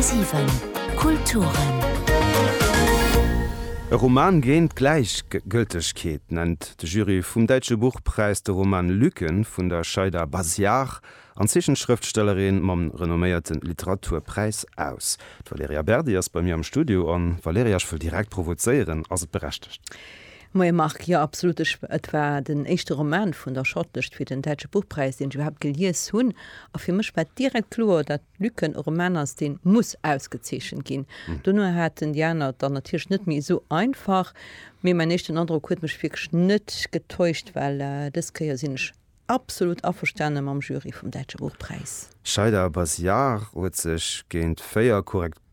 10,7 Kulturen. E Roman géint d'Gläichgëltegkeet nennt de Jury vum Däitsche Buchpräis de Roman Lücken vun der Shaida Baziar an Zeechenschrëftstellerin mam renomméierte Literaturpräis aus. D'Valerija Berdi ass bei mir am Studio. A Valerija, ech wëll direkt provozéieren, Ass et berechtegt? Moie Marc, jo absolut, ech, et war den éischte Roman vun der Shortlist fir den Däitsche Buchpräis deen ech iwwerhaapt gelies hunn a fir mech war direkt kloer dat Lücken e Roman ass deen muss ausgezeechent ginn. Dono haten déi aner et dann natierlech net méi esou einfach, mee mäin éischten Androck huet mech wierklech net getäuscht, well dës Kéier sinn ech absolut averstane mam Jury vum Däitsche Buchpräis. Shaida Baziar huet sech géint 4 korrekt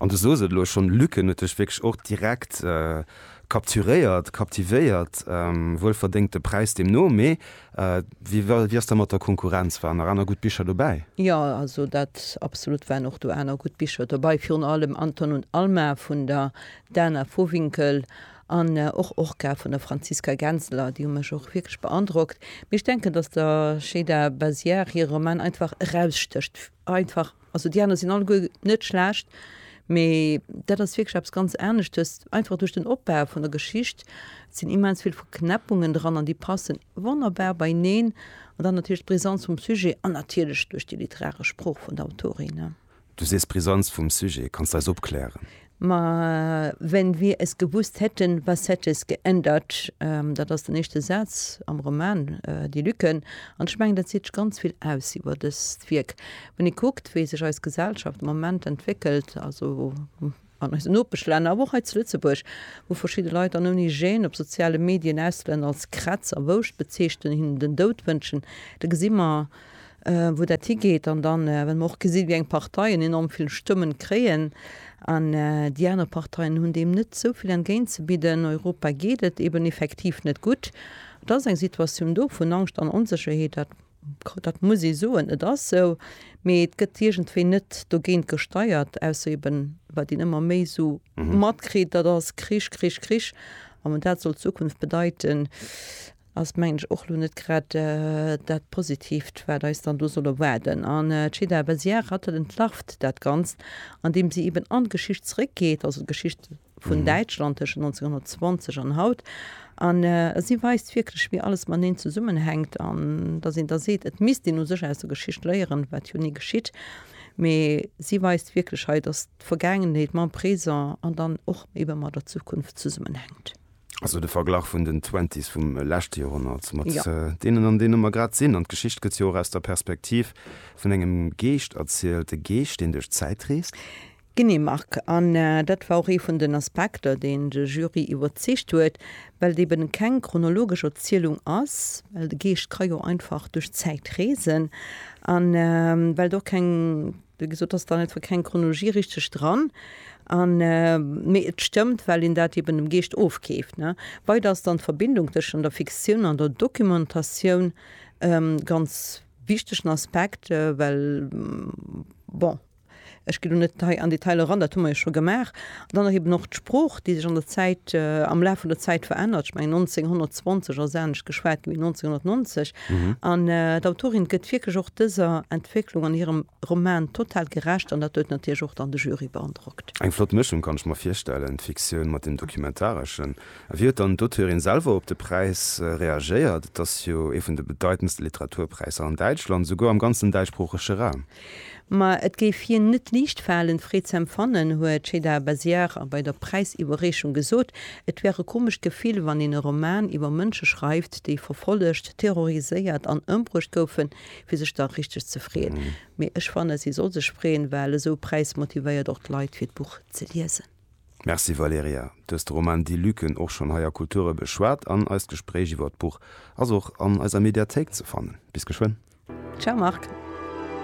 An du soos et elo schon, Luken huet dech wierklech och direkt capturéiert, captivéiert. Wuel verdéngt de Präis deemno, mee wéi ass da mat der Konkurrenz? Waren nach aner gutt Bicher dobäi? Jo, also dat absolut waren och do aner gutt Bicher dobäi, virun allem Anton und Alma vun der Dana Vohwinkel an och Orca vun der Franziska Genseler, déi hu mech och wierklech beandrockt. Mee ech denken, datt der Şeyda Baziar hire Roman einfach erausstécht. Einfach, also déi aner sinn alleguer net schlecht, mee dat ass wierklech eppes ganz aneschtes, einfach duerch den Opbau vun der Geschicht. Et sinn immens vill Verknäppungen dran an déi passen wonnerbar beineen. An dann natierlech d'Brisanz vum Sujet an natierlech duerch déi literaresch Sprooch vun der Autorin. Du sees Brisanz vum Sujet, kanns de eis opklären? Ma wenn wir es gewusst hätten, was hätte es geändert? Dat ass den éischte Saz am Roman Die Lücken. An ech mengen, dat seet ganz vill aus iwwer dëst Wierk. Wann ee kuckt, wéi sech eis Gesellschaft am Moment entwéckelt, also an eisen Nopeschlänner, awer och hei zu Lëtzebuerg, wou verschidde Leit dann ouni Gêne op soziale Medien Auslänner als Krätz a Wouscht bezeechnen, hinnen den Doud wënschen, da gesi mer, wou dat higeet an dann, well mer och gesinn, wéi eng Parteien enorm vill Stëmmen kréien an déi aner Parteien hunn deem net esou vill entgéint ze bidden, Europa geet et eben effektiv net gutt. Et ass eng Situatioun do vun Angscht an Onsécherheet, dat, dat muss ee soen, et ass esou, mee et gëtt iergendwéi net dogéint gesteiert, ausser eben, wat een ëmmer méi esou matkritt, dat ass Krich, Krich, Krich, a wann dat soll d'Zukunft bedeiten, ass mengen ech och lo net grad dat Positiivt wat eis dann do soll erwaarden. An d'Cheda Vaizière hat dat, entlarvt dat Ganzt an deem si eben an d'Geschicht zréck geet, also d'Geschicht vun Däitschland tëschent 1920 an haut, an si weist wierklech wéi alles mateneen zesummenhänkt an datt een da seet et misst een u sech aus der Geschicht léieren, wat jo ni geschitt, mee si weist wierklech hei, datt d'Vergaangenheet mam Présent an dann och ebe mat der Zukunft zesummenhänkt. Also de Verglach vun den Twenties vum leschte Joerhonnert mat ja. Äh, deenen, an deene mer grad sinn. An d'Geschicht gëtt jo och aus der Perspektiv vun engem Geescht erzielt, e Geescht, deen duerch d'Zäit reest. Genee, Marc. An äh, dat war och ee vun den Aspekter, deen de Jury iwwerzeegt huet, well et eben keng chronologesch Erzielung ass, well de Geescht ka jo einfach duerch d'Zäit reesen, an äh, well et och keng Wéi gesot ass dann einfach keng Chronologie richteg dran. An, mee et stëmmt, well een dat eben dem Geescht ofkeeft, ne. Weider ass dann d'Verbindung tëschent der Fiktioun an der Dokumentatioun e ganz wichtegen Aspekt, well, bon, ech ginn elo net hei an Detailer eran, dat hu mer jo scho gemaach. Dann nach eben och d'Sprooch, déi sech an der Zäit, am Laf vun der Zäit verännert. Ech mengen 1920 ass anescht geschwat gi wéi 1990. An d'Autorin gëtt wierklech och dëser Entwécklung an hirem Roman total gerecht an dat huet natierlech och dann de Jury beandrockt. Eng flott Mëschung, kann ech mer virstellen, d'Fiktioun mat deem Documentareschen. A wéi huet dann d'Auteurin selwer op de Präis reagéiert? Et ass jo ee vun de bedeitendste Literaturpräisser an Däitschland, souguer am ganzen däitschsproochege Raum. Ma et géif hien net liicht falen, Freed z'empfannen, huet d'Sheda Baziar bei der Präisiwwerreechung gesot. Et wär e komescht Gefill, wann een e Roman iwwer Mënsche schreift, déi verfollegt, terroriséiert an ëmbruecht goufen, fir sech da richteg ze freeën. Mee ech fanne si soll sech freeën, well esou Präis motivéiert och d'Leit, fir d'Buch ze liesen. Merci Valerija. Du hues de Roman Die Lücken och schonn hei a Kulture beschwat an eist Gespréich iwwer d'Buch ass och an eiser Mediathéik ze fannen. Bis geschwënn. Ciao Marc.